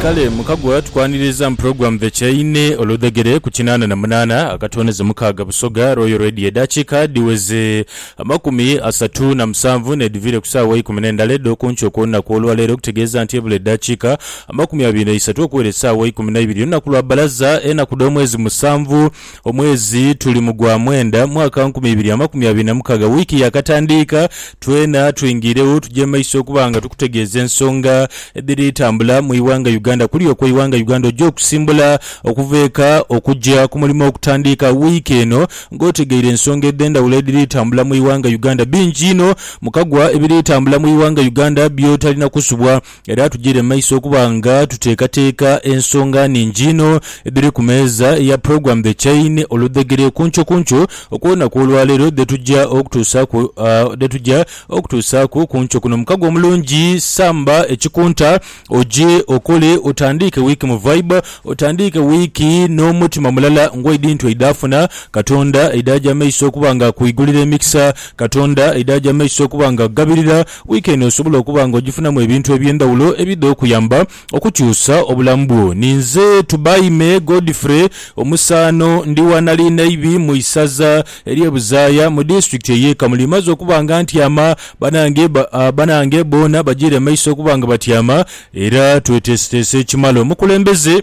Kale mukagwa tukwaniriza mu program The Chain oludhegere ku kinaana na munaana akatooneze mukaaga Busoga Royal Radio edhakiika dhiweze amakumi asatu na musanvu n'edhiviire ku saawa eikumi n'endala edh'okunkyo okw'olunaku olwaleero okutegeeza nti ebula eddakiika amakumi abiri n'eisatu okuwera esaawa eikumi naibiri olunaku lwa bbalaza enaku dh'omwezi musanvu Omwezi tuli mu gwa mwenda, mwaka nkumi ibiri amakumi abiri na mukaaga, wiiki yaakatandiika. Twena twingiiregho tugye maiso okuba nga tukutegeeza ensonga edhiri tambula mu ighanga Uganda. Kuli okwo ighanga Uganda oja okusimbula okuva eka okugya ku mulimo okutandiika wiiki eno. Nga otegeire ensonga edhendhawulo edhiri tambula mu ighanga Uganda, bingi inho. Mukagwa ebiri tambula mu ighanga Uganda byotalina kusubwa Era tugire mu maiso okuba nga tuteekateeka ensonga nnhingi inho edhiri ku meeza eya Program The Chain oludhegere ku nkyo ku nkyo okw'olunaku olwaleero dhe tugya okutuusaaku dhe tugya okutuusaaku ku nkyo kuno. Mukago omulungi, samba ekikunta oje okole otandiike wiiki mu vibe, otandiike wiiki n'omutima mulala ng'oidhintu eidhafuna Katonda, eidhagya mu maiso okuba nga akuigulira emikisa Katonda, eidhagya mu maiso okuba nga akugabirira Wiiki eno osobola okuba nga ogifunamu ebintu eby'endhawulo ebidha okuyamba okukyusa obulamu bwo. Ni nze Tubaime Godfrey, omusaano. Ndi wa Nalinayibi mu isaza ery'e Buzaaya mu disitulikiti ey'e Kamuli. Maze okuba nga ntyama, banange banange boona bajiire maiso okuba nga batyama era tweteeseteese ekimala omukulembeze.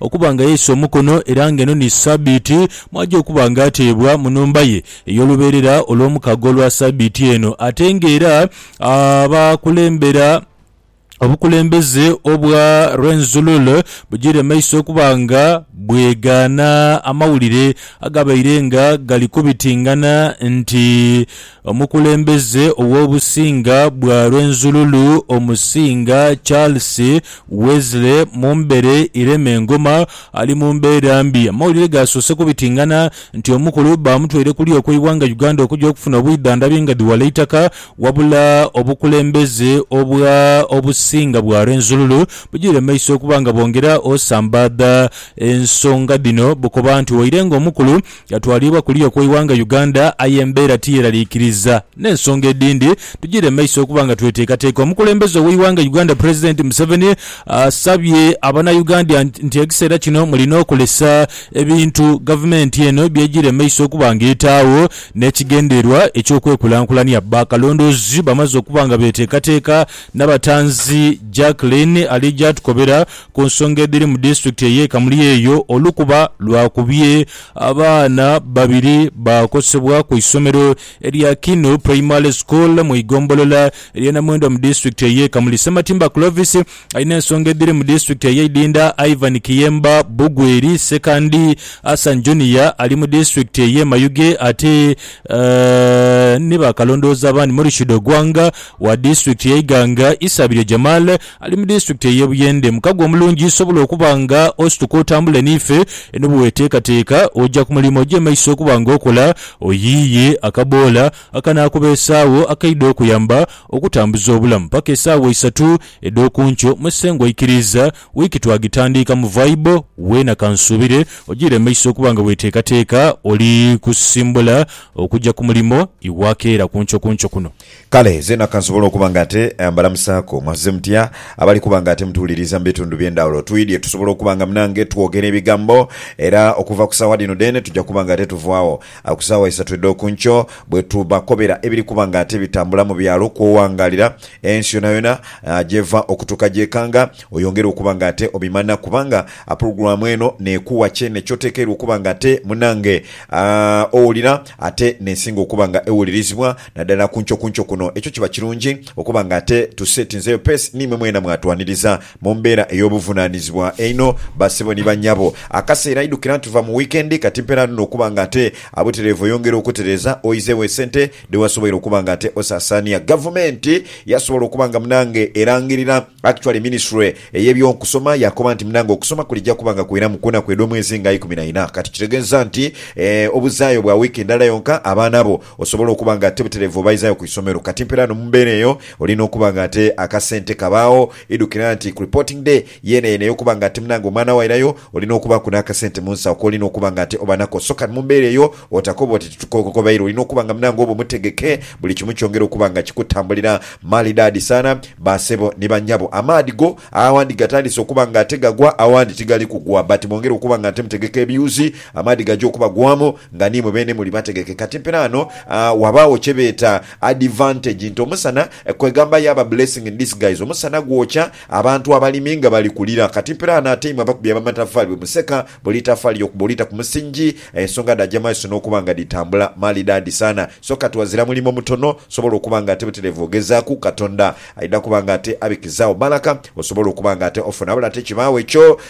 Okuba nga yaisa omukono era nga eno ni Sabiiti mw'aja okuba nga ateebwa mu nhumba ye ey'olubeerera olw'omukago olwa Sabiiti eno. Ate nga era abakulembera obukulembeze obwa Rwenzururu bujiire maiso okuba nga bwegaana amawulire agabaire nga gali kubitingana nti Omukulembeze ow'obusinga bwa Rwenzururu Omusinga Charles Wesley Mumbere Iremengoma ali mu mbeera mbi. Amawulire gaasoose kubitingana nti omukulu baamutwaire kuli okw'eighanga Uganda okuja okufuna obwidhandhabi nga dhiwala eitaka wabula obukulembeze obwa Obusinga bwa Rwenzururu bujiire mumaiso okuba nga bwongera osambaadha ensonga dhino bukoba nti waire nga omukulu Yatwalibwa kuliya okw'eighanga Uganda aye embeera tiyeraliikiriza n'ensonga edhindi tugire maiso okuba nga tweteekateeka. Omukulembeze ow'eighanga Uganda Pulezidenti Museveni asabye Abanayugandia nti ekiseera kino mulina okulesa ebintu gavumenti eno by'egira emaiso okuba nga etaagho n'ekigendererwa eky'okwekulankulania. Bakalondoozi bamaze okuba nga beteekateeka Nabatanzi Jacqueline ali gy'atukobera Ku nsonga edhiri mu disitulikiti ey'e Kamuli eyo, olukuba lwakubye abaana babiri baakosebwa ku isomero erya Kinu Primary School mu igombolola ey'e Namwendwa mu disitulikiti ey'e Kamuli. Ssematimba Clovis alina ensonga edhiri mu disitulikiti ey'e Idinda, Ivan Kiyemba, Bugweri, Ssekandi Hassan Junior ali mu disitulikiti ey'e Mayuge ate ni baakalondoozi abandi Murshid Ogwanga wa disitulikiti y'e Iganga, Isabirye Jamal Ali mu disitulikiti ey'e Buyende. Mukago omulungi sobola okuba nga osituka otambule n'ife. Eno bweweteekateeka oja ku mulimo oja emaiso okuba nga okola, oyiiye akaboola akanaakubeesaagho akaidha okuyamba okutambuza obulamu paka esaawa isatu edh'oku nkyo. Musengwa aikiriiza wiiki twagitandiika mu vaibo weena kansuubire ojiire emaiso okuba nga weteekateeka oli kusimbula okuja ku mulimo iwakeera ku nkyokunkyo kuno. Kale zeena kansobole okuba nga ate mbalamusaaku. Mwazze mutya? Abali kuba nga ate mutuwuliriza mu bitundu by'endhawulo, twidhye tusobole okuba nga munange twogera ebigambo. Era okuva ku saawa dhino dheene tuja kuba nga ate tuvaagho ku saawa isatu edh'oku nkyo bwe tubakobera ebiri kuba nga ate bitambula mu byalo kw'owangaalira ensi yonayona gy'eva okutuuka gy'ekanga. Oyongere okuba nga ate obimanha kubanga pulogulaamu eno n'ekuwa kyene ky'otekeirwa okuba nga ate munange owulira ate n'esinga okuba nga ewulirizibwa. Naddala ku nkyo ku nkyo kuno ekyo kiba kirungi okuba nga ate tuseetinzeeyo peesi niimwe mwena mwatwaniriza mu mbeera ey'obuvunaanizibwa einho. Bassebo ni bannyabo, akaseera idhukira nti tuva mu wiikendi kati mpeera ndhuno okuba nga ate abutereevu oyongera okutereeza oyizeegho esente dhe wasoboire okuba nga ate osaasaania. Gavumenti yasobola okuba nga munange erangirira actually minisitule ey'eby'okusoma yaakoba nti munange okusoma kulija kuba nga kwiramu ku naku edh'omwezi nga ikumi na ina kati kitegeeza nti obuzaayo bwa wiiki ndala yonka abaana abo Osobola okuba nga ti butereevu obaizaayo ku isomero. Kati mperaano mu mbeera eyo, olina okuba nga ate akasente kabaagho. Idhukira nti ku Reporting Day yeenayena ey'okuba nga ati munange omwana wo airayo, olina okubaaku n'akasente mu nsawo k'olina okuba nga ate oba nako. So kani mu mbeera eyo otakoba oti titukokokobaire. Olina okuba nga munange oba omutegeke, buli kimu kyongere okuba nga kikutambulira maalidaadi sana. Baasebo ni bannyabo, amaadhi go awandi gatandise okuba nga ate gagwa, awandi tigali kugwa. But mwongere okuba nga ate mutegeka ebyuzi, amaadhi gaja okubagwamu. Nga niimwe beene muli bategeke. Kati mpira ghano ghabaagho kye beeta advantage nti omusana, kwegamba yaaba blessing in disguise, omusana gwokya abantu abalimi nga bali kulira. Kati mpira ghano ate imwe abakubi ab'amatafaali bwe museka buli itafaali okuba olita ku musingi, ensonga dhaja mu maiso n'okuba nga dhitambula maalidaadi sana. So kati ghazira mulimo mutono osobola okuba nga ate butereevu ogezaaku, Katonda aidha kuba nga ate abikizaagho bbalaka osobola okuba nga ate ofuna. Wabula ate kibaagho ekyo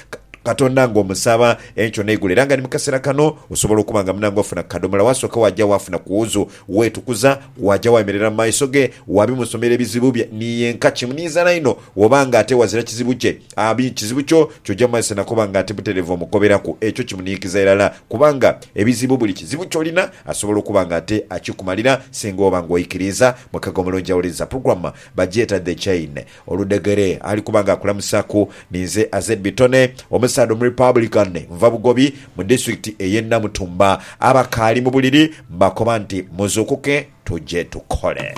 Katonda ng'omusaba. Enkyo n'eigulo era nga ni mu kaseera kano osobola okuba nga munange ofuna ku kadhomola waasooka waaja waafuna ku wuzu. Weetukuza, waaja waayemerera mu maiso ge, waabimusomera ebizibu bye ni yenka. Kimuniizaala inho wooba nga ate wazira kizibu kye. A bi kizibu kyo ky'oja mu maiso na kuba nga ate butereevu omukoberaku. Ekyo kimuniikiza irala kubanga ebizibu buli kizibu ky'olina asobola okuba nga ate akikumalira singa oba nga oikiriiza. Mu kagomolo njawuliza, programme, bagyeta The Chain. Oludhegere ali kuba nga akulamusaku. Ninze Azed Bitone, omusaadha Omurepublican, nva Bugobi mu disitulikiti ey'e Namutumba. Abakaali mu buliri mbakoba nti muzuukuke tuje tukole.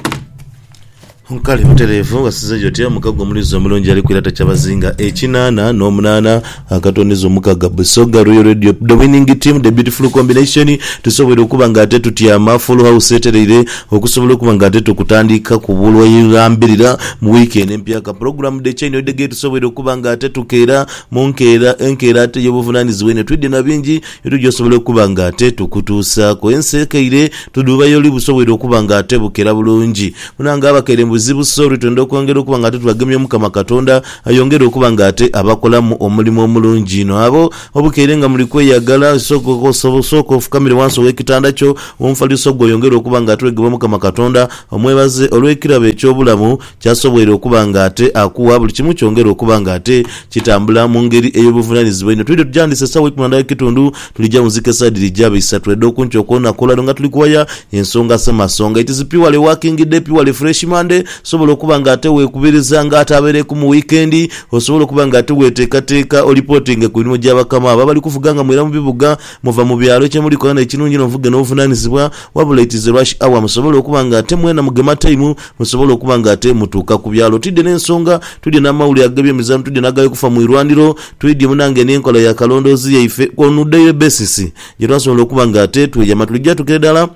Nkali butereevu nga sizze gyoti, omukago omulizi omulungi ali kwirata Kyabazinga ekinaana n'omunaana. Akatonizo mukaga Busoga Royal Radio the winning team the beautiful combination tusobweire okuba nga ate tutyama full house etereire okusobola okuba nga ate tukutandika ku bulwairambirira mu week eno empya ka program the chain of the gate tusobweire okuba nga ate tukeera mu nkeera enkeera ate eyobuvunanizibwa einho twidhi na bingi byetwija osobola okuba nga ate tukutuusaku ensi ekeire tudhubayo oli busobweire okuba nga ate bukera bulungi munange abakeire mu buzibu sorry twendha okwongera okuba nga ate tubagemya omukama katonda Ayongere okuba nga ate abakolamu omulimu omulungi inho. Agho obukeire nga muli kweyagala, sooka ofukamire wansi ow'ekitanda kyo, omufaliso gwo oyongere okuba nga ate weegeba Omukama Katonda, omwebaze olw'ekirabo eky'obulamu ky'asoboire okuba nga ate akuwa. Buli kimu kyongere okuba nga ate kitambula mu ngeri ey'obuvunaanizibwa inho. Twidho tujandiise esaawa eikumi na ndala ekitundu Tulija mu nzika esaidi dhija isatu edh'okunkyo okw'olunaku olwaleero nga tuli kuwaya ensonga se masonga. It is purely working day, purely fresh Monday. Osobola okuba nga ate weekubiriza nga ate abeereku mu wiikendi. Osobola okuba nga ate weeteekateeka olipotinge ku mirimo gya bakama bo abali kuvuga nga mwira mu bibuga, muva mu byalo. Kye muli kola n'e kirungi inho muvuge n'obuvunaanizibwa. Wabula it is a rush hour, musobole okuba nga ate mwena mugema time musobole okuba nga ate mutuuka ku byalo. Twidhye n'ensonga, twidhye n'amawulire ag'ebyemizaano, twidhye n'agali kufa mu irwaniro. Twidhye munange n'enkola ya kalondoozi yaife ku on daily basis gye twasobola okuba nga ate tweyama tuli jatukire dala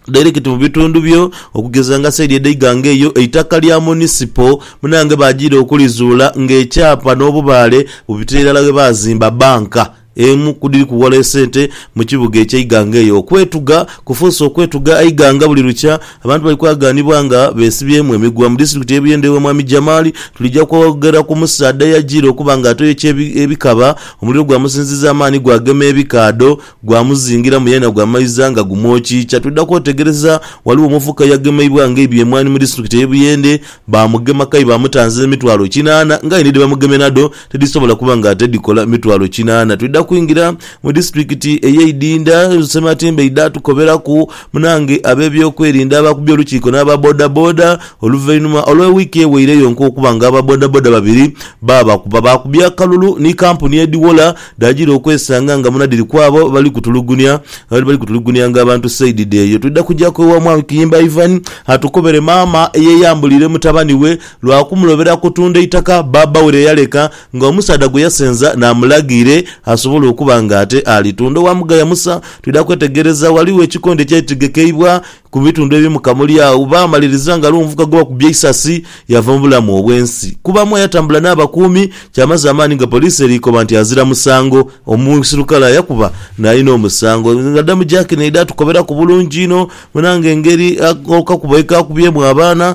direct mu bitundu byo okugeza nga saidi edha Iganga eyo eitaka lya Munisipo munange bajiira okulizuula nga ekyapa n'obubaale bubitira irala we baazimba bbanka emu ku dhiri kuwola esente mu kibuga eky'e Iganga eyo. Okwetuga kufuuse okwetuga Eiganga buli lukya Abantu bali kwagaanibwa nga beesibyemu emigwa mu disitulikiti y'e Buyende ewa Mwami Jamali. Tulija kwogera ku musaadha eyajiire okuba nga atoyokya ebikaba, omuliro gwamusinziza amaani gwagema ebikaadho, gwamuzingiramu yenha gwamaiza nga gumwokiikya. Twidha kwetegereza ghaligho omuvubuka eyagemeibwa nga aibye emwaani mu disitulikiti ey'e Buyende, baamugema kayi baamutanza emitwalo kinaana ng'aye ni dhebamugemye nadho Tidhisobola kuba nga ate dhikola mitwalo kinaana. Twidha kwingira mu disitulikiti ey'e Idinda, Sematimba aidha atukoberaku munange ab'ebyokwerinda abaakubye olukiiko n'aba bodaboda oluvainhuma olwa wiiki eweire yonka okuba nga aba bodaboda babiri baabakuba. Baakubye akalulu ni kampuni edhiwola dhaagira okwesanga nga muna dhiri kwabo bali kutulugunya abadde bali kutulugunyanga abantu saidi dh'eyo. Twidha kujaku ewa Mwami Kiyimba Ivan atukobere maama eyeyambuliire mutabani we lwa kumulobera kutunda eitaka bbaabba we lye yaleka nga omusaadha gwe yasenza n'amulaga ire asobole okuba nga ate alitunda owa Mugaya Musa. Twidha kwetegereza ghaligho ekikondo ekyaitegekebwa ku bitundu ebimu Kamuli agho baamaliriza nga aliwo omuvubuka gwe bakubye eisasi yava mu bulamu obw'ensi. Kubamu ayatambula n'abakuumi kyamaze amaani nga poliisi eri koba nti azira musango. Omuisirukale ayakuba n'alina omusango nga damu jaaki n'eidha tukoberaku bulungi inho. Munange engeri akakubo ye kaakubyemu abaana